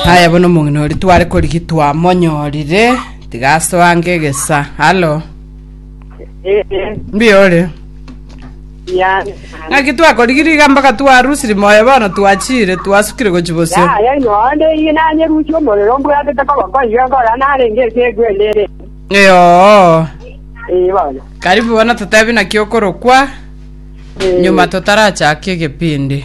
haya bono omong'ina ori tware korigi twamonyorire tiga asoange egesa halo mbuya ore Yani. ng'aki twakorigiri iga mpaka twarusiri moyo bono twachire twasukire gochi bosio Ya, ya ino ande iye nanye rusi omorero mbwatete koba koiga nkora narenge ase egwendere. eyoo Eh bana. karibu bono totebi naki okorokwa Eh, nyuma totarachaka egepindi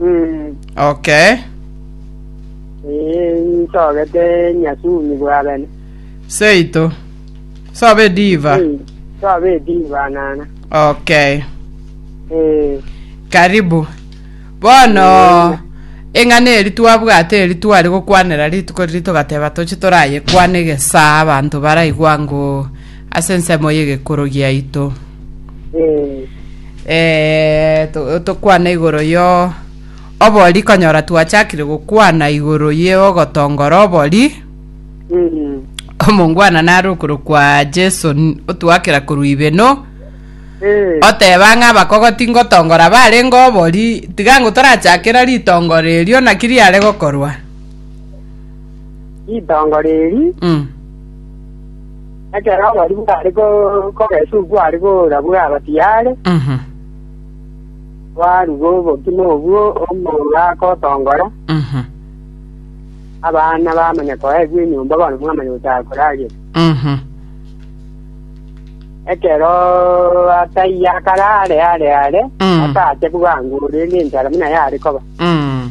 Mm, Okay. eh, nsogete nyasumi bwabene. Seito. Sobe ediva. Mm, Sobe ediva nana. Okay. Eh, Karibu. Bono eng'ana eri twabwate eri twari gokwanera rituko riri togateba toche torayekwane gesaa abanto baraigwa ngoo ase ensemo y'egekuru giaito Eh, Eh, to- tokwana igoro yo obori konyora twachakire gokwana igoro ye ogotongora obori mm, omongwana nare okoro kwa jesu n- otwakera korwa ibeno eh, oteba ng'a abakogoti ngotongora barenge obori tiga ngo torachakera ritongoro erio naki riare gokorwa itongo riri mm. Ekero oborio bware ko- kogesuka kware koora bwaba tiyare, Mhm. kwaruga obokima obwo omouga agotongora, Mhm. abana bamanya koegwa enyomba bono mwamanya gochaka koragera. Mhm. Ekero ataiyo akarare are are, Mm. ataache bwango rende enchara buna yare koba. Mm.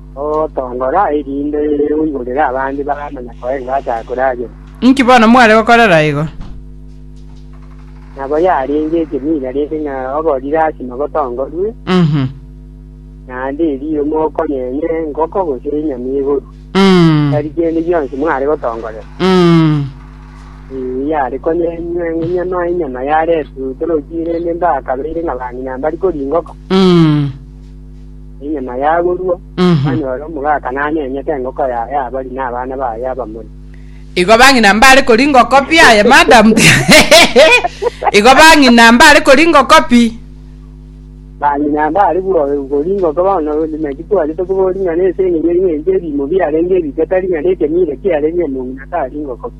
Ogotongora erinde oigorere abande baramanya koenga ase akoragera. Inki bono mware gokorera igo? Nabo yarenge ekeminga rende ng'a ogori lasima gotongorwe, Mhm. naende erio mokonyenye engoko gose enyama egoru. Mm. Tari kende gionsi mware gotongorera. Mm. Ee, yare konyenywa enyama, enyama yaretwe otoroki, rende mbakabeire ng'a bang'ina mbari koria engoko. Mm. enyama yaborua, Mhm. banyore omogaka nanyenyete engoko ya ya abari na abana baye abamori. Igo bang'ina mbare kori ngokopi aye madam. Igo bang'ina mbare kori ngokopi. Bang'ina mbare bwo- kori engoko bono maki kwagete koboria ng'a nese eng'enye ng'enche ebimo biarenge ebike tari ng'a nekenyire kiarenge omong'ina tari ngokopi.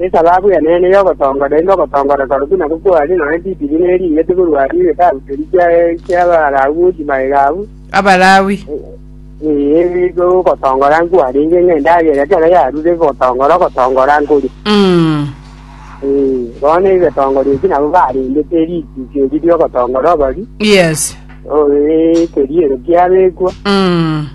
Esababu y'eneene y'ogotongora erinde ogotongora kore buna gokwane nonya chitiri ne ring'iti korwa ase egetabu keria kia ki'Abalawi gochia magega abwo. Abalawi. Ee, nigo ogotongora nkwarenge ng'a endagera ekero yarure gotongora ogotongora nkore. Mm. Ee, bono egetongoro eki nabo barendete rituko eri ri'ogotongora obori, Yes. o- ee, keria ero kiabekwa. Mm.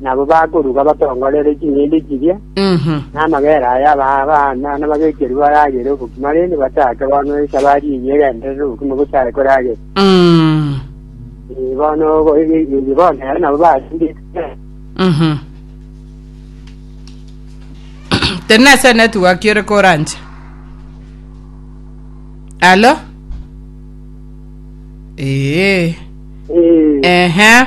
nabo bakoruga batongorere ching'ende chiria, Mhm. na amagera aya aba abana nababekerwe baragere obokima rende bataake bono esabari eyio egenderere obokima bosae koragera. Mm. Eh, bono bo- eh, eh, bono ero nabo basinde Mhm. Teri nase network ore koranche. Alo? Ee. Eh, Ehe.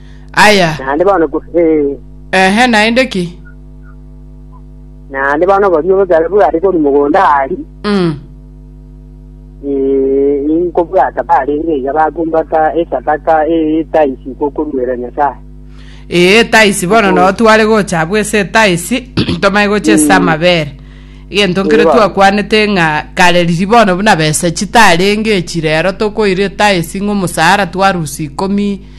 Aya, Naende bono ko- eh, ehe, naende ki? naende bono boria obosabe bware korwa mogondo aria Mm. eh, inkobwata barenge iga bakumbata esadaka etaisi gokoruera Nyasaye Ee, etaisi bono Mm. no tware gocha abwo ase etaisi tomanye gocha ase Mm. amabere egento nkere Ee, bono. twakwanete ng'a kare riri bono buna besa chitarenge echi rero tokoira etaisi ng'a omosaara twarusia ikomi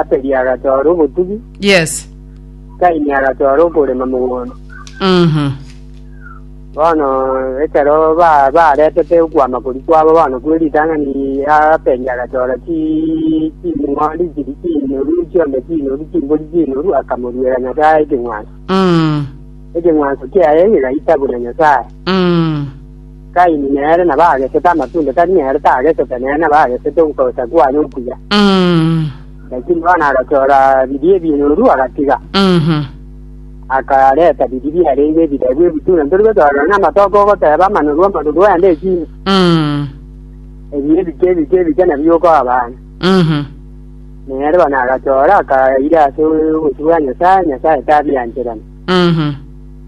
Abeli agatwara obotugi, Yes. Kaini agatwara okorema mogondo. Mhm. Bono ekero ba- baretete okwama kori kwabo bono kwe ritang'ani, Abeli agatwara chi- ching'ondi chiri chinoru, chiombe chinoru, chimbori chinoru, akamoruera Nyasae ekeng'wanso. Mm. Ekeng'wanso kiaye kigaita buna Nyasae. Mm. Kaini nere nabo agesete amatunde tari nere tagesete, nere nabo agesete ogocha kwaye okuya. Mm. Lakini bono agachora biria ebioru agatiga, Mhm. akareta biria biarenge ebirebu ebitune. Ntori gochora nonya amatoke ogoteba amanuru amanuru aende echina. Mm. Ebi ebike ebike ebike nabio okoa abana. Mhm. Nere bono agachora akaira ase obochie bwa Nyasaye, Nyasaye tabiancherani. Mhm.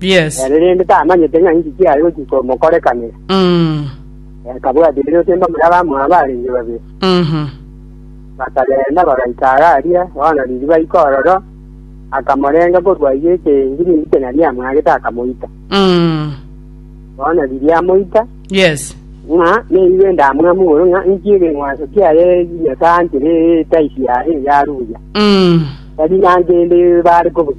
Yes. Ere rende tamanyete ng'a inki kiare gochia komokorekanera. Mm. Akabwatia erio osemba moria abamoa barenge babere. Mhm. Bakagenda bagaika are aria, bono ririba iko ororo, akamorenga korwa ayio ekengiri inki kenya riamwagete akamoita. Mm. Bono riria amoita, Yes. ng'a neigo endamwamu igoro ng'a inki egeng'wanso kiaye Nyasae anchire etaisi yaye yaruya. Mm. Tari nanche ende bare kobusa.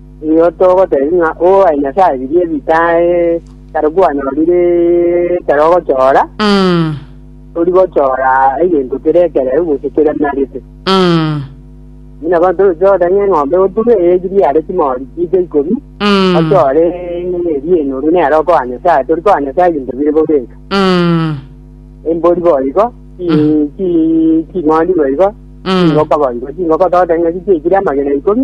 Nigo togotebia ng'a obobae Nyasae biria bitae tari kwanyorire ekero ogochora, Mm. tori gochora egento kere ekereu gose keremerete. Mm. Buna bono toroche goteba ng'a eng'ombe gotuga eyechire yare chimori chi'nche ikomi, Mm. ochore eria enoru nere okoa Nyasae, tori koa Nyasae ebinto bire bobeka. Mm. Embori boigo, chi- chi- ching'ondi boigo, Mm. chingoko boigo, chingoko togoteba ng'a chichiekire amagena ikomi,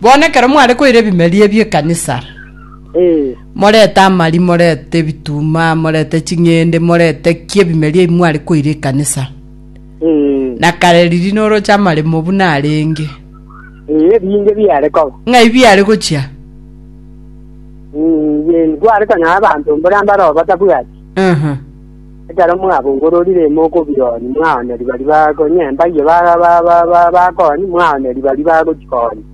Bono ekero mware koira ebimeria ebio ekanisa, Ee. morete amari, morete ebituma, morete ching'ende, morete ki ebimeria ebi mware koira ekanisa. Ee. Na kare riria noroche amaremo buna arenge, Ee, ebinge biare koba. ng'ai biare gochia? Mm, Yesu, kware konyora abanto mbore ambare oo batabwati. Aha. Ekero mwabongororire mokobioria, mwaona riba riba konyia embaiyo bakooni, mwaona riba riba gochia koni.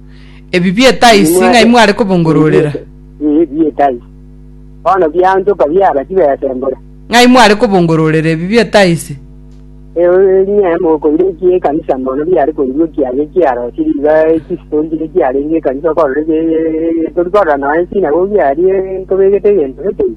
Ebi bieta isi ng'ai mware kobongororera? Ee, bieta isi. Bono bianchoka biaba chibesembore. Ng'ai mware kobongororera ebi bieta isi? Onye mokoira ekiya ekanisa mono biare koigwa ekiage kiarosire iga chisitontire chiarenge ekanisa okorora tori korora nonya esinagogi aria ntobegete egento gete iga.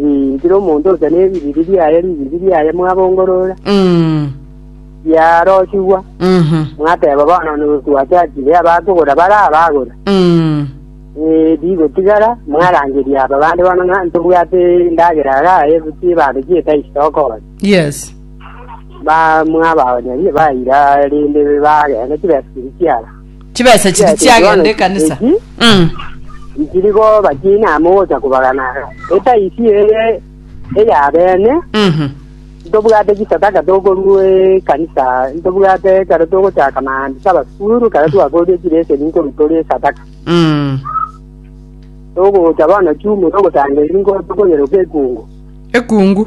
Ee, kera omonto ocha n'ebiriri biaye, ribiri riaye mwabongorora, Mm. biarochigwa, Mhm. mwateba bono notwachachire abakogora bare abagora. Mm. Ee, bigotigara, mwarangeria aba bande bono ng'a ntobwate endagera agaye gochia ebando chi'etaisi tokora. Yes. Ba mwabaonyerie baira rende bagenda chibesibiri chiabo. Chibesa chiri Chibesa echi chiagenda bono ekanisa. echi Mm. nchiri koba chiina amo gocha kobagana etaisi eye eyabene Mhm. ntobwate chisadaka tokorua ekanisa ntobwate ekero togochaka maambia sabasukuru ekero twakoria chileseni nkorutoria esadaka Mm. togocha bono chumura ogosanga eri nkotokonyeroka ekungu ekungu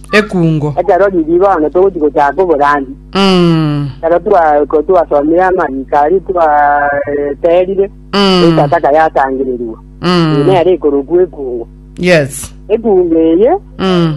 Ekungo. Ekero riria bono togochi gochaka oborandia, Mm. ekero twa- ko- twasomire amariiko aria twaterire, Mm. etataka yatangereria. Mm. Nere ekorokwa ekungo. Yes. Ekungo eye, Mm.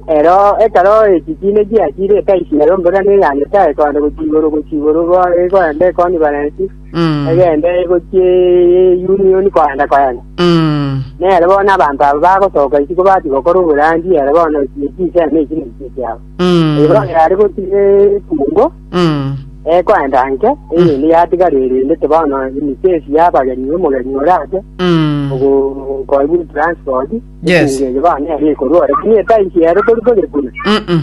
ero ekero echikiine chiachire etaisire omborane ya Nyasaye koende gochia igoro gochia igoro go- egoenda ekoni barensi Mm. egende gochie union koenda koenda Mm. nere bono abanto abo bagosoka isi kobati gokora oborandi ere bono chiseme isi nechi chiabo Mm. ero yare gotire ekungo Mm. ekoenda nke eyindi yatigara erinde te bono inikesi yabageni omogeni orate Mm. ogokoibwa transport Yes. ekungo eye bono ere ekorwa ore buna etaisi ero tori kore kuna Mm-mm.